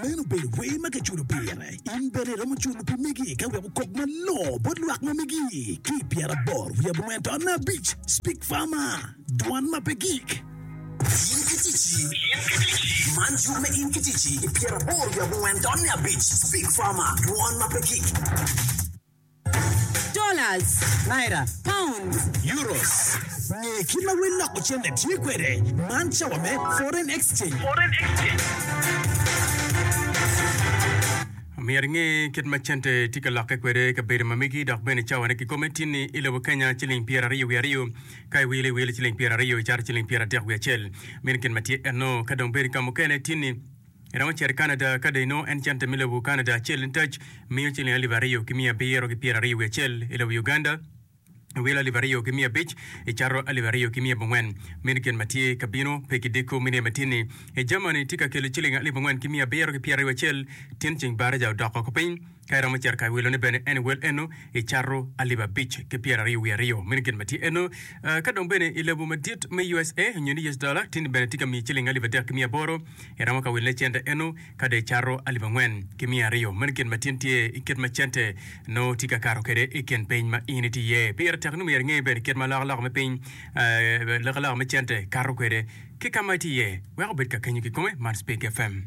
Meno obedo wer ma kiculo pire. In bene iromo culo pi megi ka weko kok malor bot lwak ma megi. Ki pyeraboro wiye abongwen to nne abic, Speak Farmer, Dwan ma pe gik. In ki ticci. Man cuk me In ki ticci i pyeraboro wiye abongwen to nne abic, Speak Farmer, Dwan ma pe gik. Dollars. Naira. Pounds. Euros. Nge kit ma wel loko cente tye kwede. Man cawa me foreign exchange. Myero inge kit ma cente tye ka lokke kwede i kabedo ma megi dok bene cawane kikome tin ni i lobo Kenya ciling pyera aryo wiye aryo ka iwilo iwilo ciling pyera aryo icato ciling pyera adek wiye acel. Meno gin ma tye enno ka dong bedi ka mukene tin ni Iromo cito i Canada ka dong inongo en cente me lobo Canada acel nitac miyo ciling alip aryo ki miya abiro ki pyera aryo wiye acel. I lobo Uganda, iwilo alip aryo ki miya abic, icato alip aryo ki miya abongwen. Meno gin ma tye ka bino, pe ki diko, mine ma tyenni. I Germany, tye ka kelo ciling alip angwen ki miya abiro ki pyera aryo wiye acel, tyen ceng baraja odok oko piny. Ka iromo cito ka i wilone bene en iwel eno i cato alip abic ki pyeraryo wiye aryo. Meno gin ma tye eno. Ka dong bene i lobo madit me usa nyo ni us dollar tini bene tye ka miyi ciling alip adek ki miya aboro, iromo ka wilone cente eno ka dong icato alip angwen ki miya aryo. Meno gin ma tin tye i kit ma cente nongo tye ka kato kwede i kin piny ma in itye iye. Pire tek ni myero inge bene kit ma alokaloka me piny, alokaloka me cente kato kwede ki ka ma itye iye wek obed ka kenyo kikome man Speak FM.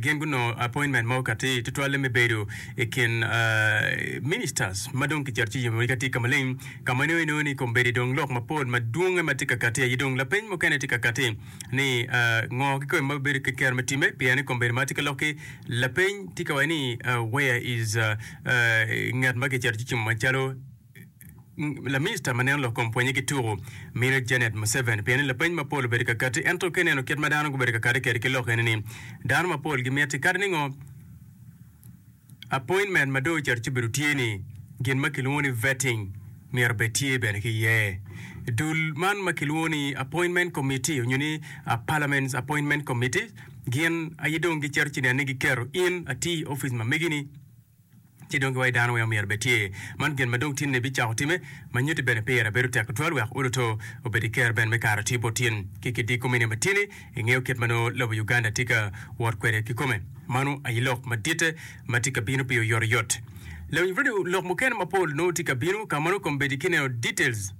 gin gunongo appointment mo katir tutwalle me bedo i kin ministers ma dong kicito ci yimogi katir ka maleng ka ma inongo inongo ni kombeddi dong lok mapol madwonge ma tye ka kati aye dong lapeny mukene tye ka kati ni ngo ki kome ma bibedo ki kero me time pien ni kombeddi ma tye ka lokki lapeny tye ka waco ni where is ngat ma kicito ci cimo macalo Laminista ma neno lok kom pwonye ki tuku mine Janet Museveni pien ni lapeny mapol obedo ka kati ento ka ineno kit ma dano gubedo ka kati kwede ki lok eni ni dano mapol gimiti kadi ni ngo appointment ma dong ocito ci obedo tye ni gin ma kilwongo ni vetting myero bed tye bene ki iye. Dul man ma kilwongo ni appointment committee onyo ni parliament's appointment committee gin aye dong gicito ci neno ni giketo in atir i opic ma megi ni ci dong giwaco dano weng omyero bed tye. Man gin ma dong tinni bicako timme, ma nyutti bene pire bedo tek tutwal wek uluto obed iker ben me karo tye bot tin ki ki diko mini ma tinni ingeyo kit ma nongo lobo Uganda tye ka wot kwede ki kome. Mano aye lok maditte ma tye ka bino pi oyoto yot. Lawiny bro ni lok mukene mapol nongo tye ka bino, ka mano kom bedi ki neno details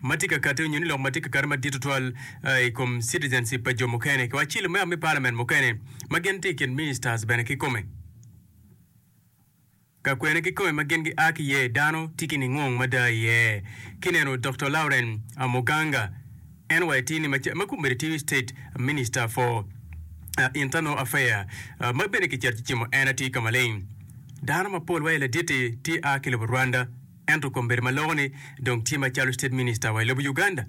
ma tye ka kati onyo ni lok ma tye ka kati madit tutwal i kom citizenship pa jo mukene ki wa cilo me a me parliament mukene ma gin tye ikin ministers bene ki kome. Ka kwene ki kome ma gin gia ki iye dano tye ki ningwong mada iye. Kineno Doktor Lauren Amoganga, NYT ni mac ma kombeddi tye State Minister for Internal Affair ma bene kicito cicimo en atir ka maleng. Dano mapol wa i laditi tye a ki lobo Rwanda. Ento kombeddi ma loko ni dong tye macalo state minister wa i lobo Uganda.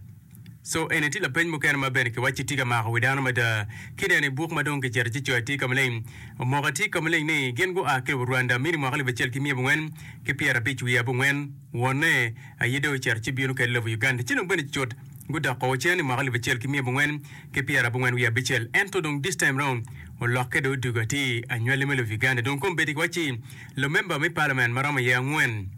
So eni tye lapeny mukene ma bene kiwacci tye ka mako wi dano mada. Kineno i buk ma dong kicito ci coyo atir ka maleng, omoko atir ka maleng ni gin gua ki lobo Rwanda mini mwaka alip acel ki miya abongwen ki pyerabic wiye abongwen wonne aye dong ocito ci bino kede lobo Uganda. Ci dong bene cut gudok o cen i mwaka alip acel ki miya abongwen ki pyerabongwen wiye abicel. Ento dong this time round olokke dong odugo atir anywali me lobo Uganda. Dong kombeddi kiwacci. Lumemba me Parliament ma romo iye angwen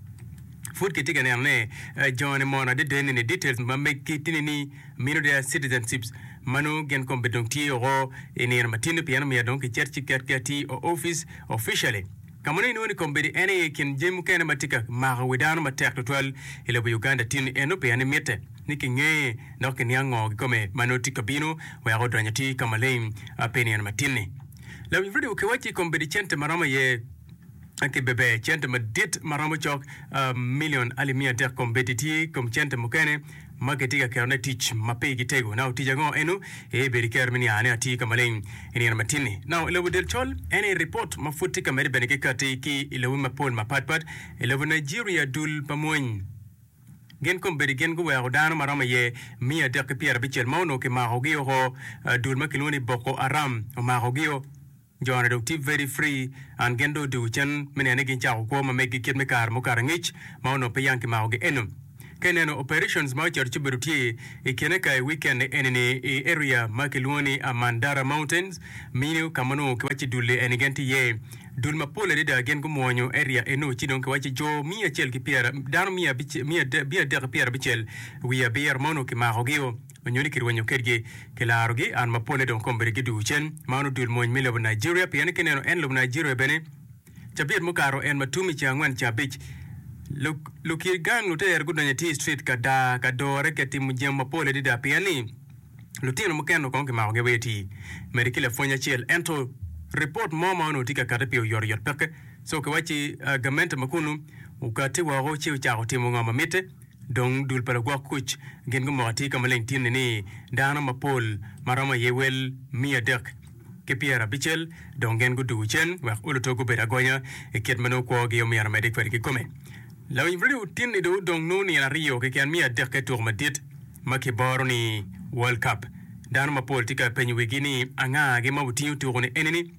pud kitye ka neno ni joni mono adedeni ni details ma meggi tye ni mino deya citizenships ma nongo gin kombe dong tye oko i nino ma tini pien omyero dong kicet ci ket ki ati o office officially ka mono inongo ni kombedi en aye kin jami mukene ma tye ka mako wi dano matek tutwal i lobo Uganda tini eno pien ni mitte ni kinge dok kiniang ngo kikome ma nongo tye ka bino wek odonyo ati ka maleng pi nino ma tini. Lawiny redio kiwacci i kom bedi cente maromo aye ki bebe cente madit maromo cok milion alip miya adek kom bedi tye kom cente mukene ma kitye ka ketone tic ma pe gi tego. Nao tic ango eno ee bedi kero me niane ati ka maleng i nino matinni. Nao i lobo del col en ee report ma pud tye ka mede bene ki kati ki i lobo mapol mapat pat i lobo Nigeria dul pa mwony. Gin kombeddi gin guweko dano ma romo iye miya adek ki pyerabicel ma onongo kimakogi oko, dul ma kilwongo ni Boko Haram omakogio. Jo-na dong tye very free and gin dong odwogo cen me neno ni gincako kwo ma meggi kit me kare mukato angec ma onongo pe yang kimakogi eno. Ka ineno operations ma ocito ci obedo tye i kine ka i weekend eni-ni i area ma kilwongo ni Amandara Mountains, Minio, ka ma onongo kiwacci dul-li eni gin tye iye. Dul mapol adada gin gumwonyo eria eno ci dong kiwaco jo miya acel ki pyera, dano miya abic, miya adek, miya adek ki pyera abicel wiye abiro ma onongo kimakogio, onyo ni kirwenyo kedgi, kilarogi, an mapolle dong okombere gi duu cen. Mano dul mony me lobo Nigeria, pien ni kineno en lobo Nigeria bene cabit mukato en ma tum i ceng angwen ceng abic, lu, lukir gang lutere gudonyo atir street ka daa, ka dore ki timo jemo mapol adada pien ni. Lutino mukene kong kimakogi aweya eti mede ki lapwony acel. Ento ripot mo ma onongo tye ka kati pi oyotoyot peke. So kiwacci gamente ma kunu okati woko ci ocako timo ngo ma mitte. Dong dul pa lagwok kuc gin gumoko atir ka maleng tin-ni ni dano mapol ma romo aye wel miya adek. ki pyera abicel, dong gen guduwu cen wek oluto gubed agonya i kit ma nongo kwogi omyero omedde kwede kikome. Lawinybrodi otinni dong odong nongo nino aryo keken me adekke tuko madit ma kiboro ni World Cup. Dano mapol tye ka penyo wigi ni anga gi ma otingo tuko ni enini.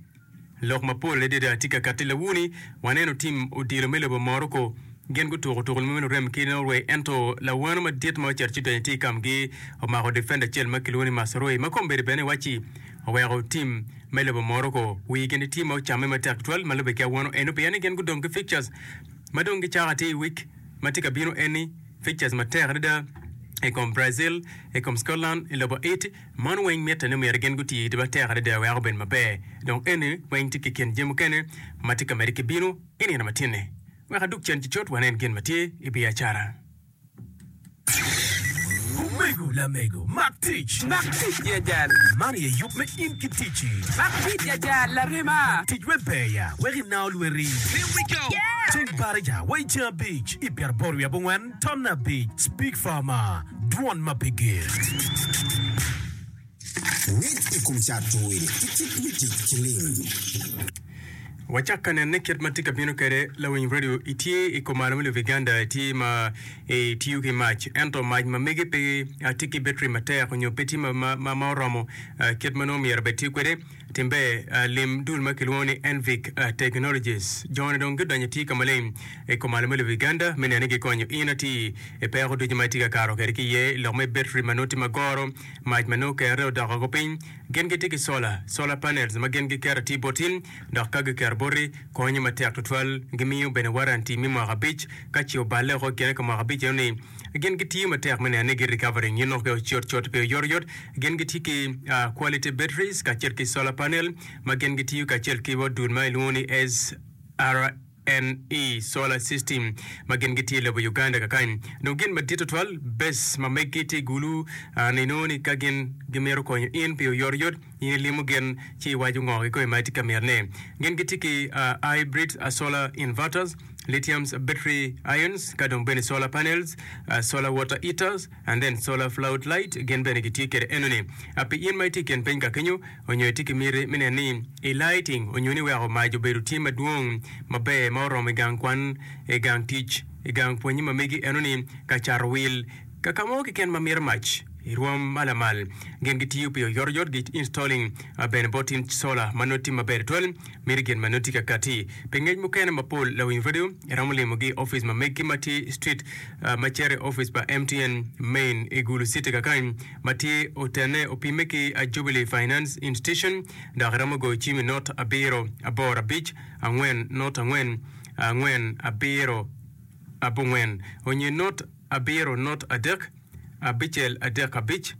Lok mapol adada tye ka katti lawu ni waneno tim odilo me lobo Morocco gin gutuko tuko lum me lurem ki Norway ento lawano madit ma ocito ci donyo tye i kamgi omako defender acel ma kilwongo ni Mazraoui ma kome bedo bene waci oweko tim me lobo Morocco wii gin tye ma ocamme matek tutwal ma lube ki awano eno pien ni gin gudong ki fixtures ma dong gicako atir i week ma tye ka bino eni, fixtures matek adada i kom Brazil, i kom Scotland, i lobo it, man weng mitte ni myero gin guti iti matek adada wek obed maber dong eni weng tye ki kin jami mukene ma tye ka mede ki bino i nino matini wek adug cen ki cut wanen gin ma tye i biacara. Omego lamego, mak tic. Mak tic ya jal, man aye yub me in ki ticci. Mak tic ya jal, larema. Tic wek ber ya, wek inao lweti. Here we go! Ceng Baraja wa i ceng abic, i pyeraboro wiye abongwen, ton abic, Speak Farmer, dwon ma pe ger. Ngec i kom cato wil ki kit me tic ki lim. Wacak ka nene kit ma tye ka bino kwede. Lawiny redio, itye i kom malo me lobo Uganda, itye ma itiyo ki mac, ento mac ma megi pe tye ki betri matek nyo pe tye ma oromo kit ma nongo myero bed tiyo kwede. Timbe, Lim dul ma kilwongo ni Envic Technologies. Jone dong gidonyo itye ka maleng i kom malo me lobo Uganda me neno ni gikonyo in atir i peko ducu ma itye ka kato kwede ki iye i lok me betri ma nongo tye ma goro. Mac ma nongo kerre odok woko piny. Gin gitye ki cola, solar panels, ma gin giketo atir boti, dok ka giketo boti, konyo matek tutwal. Gimiyo bene waranti me mwaka abic. Ka ce oballe woko i kine ka mwaka abic eno-ni, gin gitiyo matek me neno ni gi recovering nyo nongo pe ocot cot pe oyotoyot. Gin gitye ki quality batteries kacel ki solar panel ma gin gitiyo kacel ki odul ma ilwongo ni SRA. NE solar system ma gin gitye lobo Uganda kakany dong gin madit tutwal bes ma meggi tye gulu an inongo ni ka gin gimito konyo in pi oyotoyot in ilimo gin ci iwaco ngogi kome ma itye ka mito ne gin gitye ki hybrid solar inverters lithium battery ions ka dong bene solar panels solar water heaters and then solar flood light gin bene gitye kede enoni pi in ma itye ikin piny ka kenyo onyo itye ki miti me neno ni i lighting onyo ni weko mac obedo tye madwong maber ma oromo i gang kwan, i gang tic, i gang pwonye ma megi eno ni ka cato wil, kakamo keken ma mito mac i rwom ma lamal. Gin gitiyo pi oyoto yot gi installing bene bot tin solar ma noti maber tutwal miti gin ma noti kakati pi ngec mukene mapol lawiny radio iromo limo gi office ma megi ma tye street ma cito i office pa MTN main i Gulu city kakany ma tye otenne opimme ki a Jubilee Finance Institution dok iromo goyo cim i not abiro aboro abic angwen not angwen angwen abiro abongwen onye not abiro not adek abicel adek abic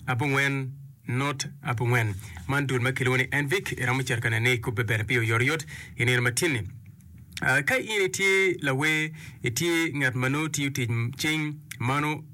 abongwen not abongwen. Man dul ma kilwongo ni NVIC iromo cito ka nene ikubbe bene pi oyotoyot i nino matinni. Ah, ka in itye lawer, itye ngat ma nongo tiyo tic cing, mano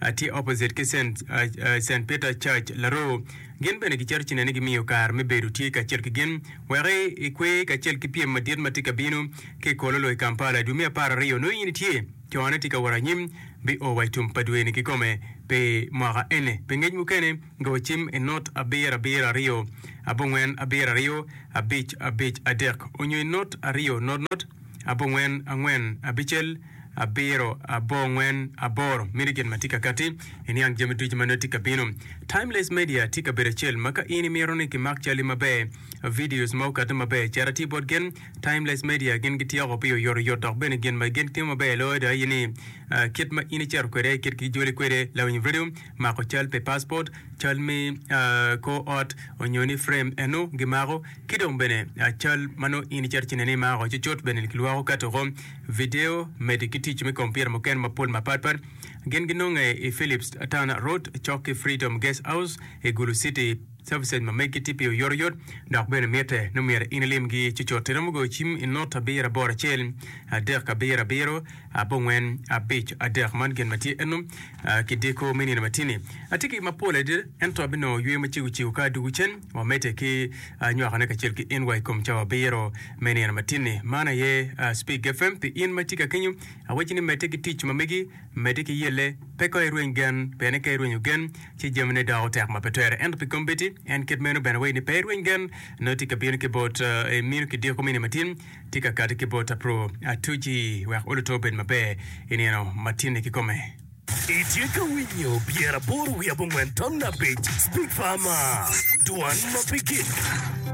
a tye opposite ki Saint Peter Church, Laroo. Gin bene gicito ci nene gimiyo kare me bedo tye kacel ki gin wek ikwer kacel ki pyem madit ma tye ka bino ki i Kololo i Kampala i dwe me apar aryo. Nongo in itye cone tye ka wot anyim bi o wa i tum pa dwe ni kikome pi mwaka eni. Pi ngec mukene go cim i not abiro abiro aryo abongwen abiro aryo abic abic adek onyo i not aryo not not abongwen angwen abicel. abiro, abor ngwen, aboro. Mini gin ma tye ka kati, iniang jami ducu ma nongo tye ka bino. Timeless Media tye kabedo acel ma ka in imito ni kimak calli maber, videos ma okati maber, cit ati bot gin. Timeless Media gin gityeko pi oyotoyot dok bene gin ma gin timo maber loyo ada aye ni kit ma in icito kwede, kit kijoli kwede, lawiny radio, mako cal pi paspot, cal me kor ot, onyo ni frame eno gimako. Ki dong bene cal ma nongo in icito cineni imako cucut bene kilwoko kato woko vidio medi ki tic me kompiuta mukene mapol mapatpat. Gin ginonge i Phillips Town Road cok ki Freedom Guest House i Gulu City. Services ma megi tye pi oyotoyot dok bene mitte nongo myero in ilimgi cucut. Iromo goyo cim i not abiro aboro acel adek abiro abiro abongwen abic adek. Man gin ma tye eno ki diko me nino matini. Atye ki mapol adada ento abinongo yweyo macego cego ka adwogo cen. Wamedde ki nywakone kacel ki in wa i kom cawa abiro me nino matinni. Man aye Speak FM pi in ma tika kenyo. Awacci ni medde ki tic ma megi, medde ki yelle. Pe ka irweny gen, pien ni ka irwenyo gen, ci jamine doko tek ma pe twere. Ento pi kombeddi, en kit meno bene wacci ni pe irweny gen, nongo tika bino ki bot minu ki diko mini matin, tika kati ki bot apro atuci wek oluto obed maber i nino matinni kikome. Itye ka winyo pyeraboro wiye abongwen tam abic Big Pharma, dwan ma pe gik.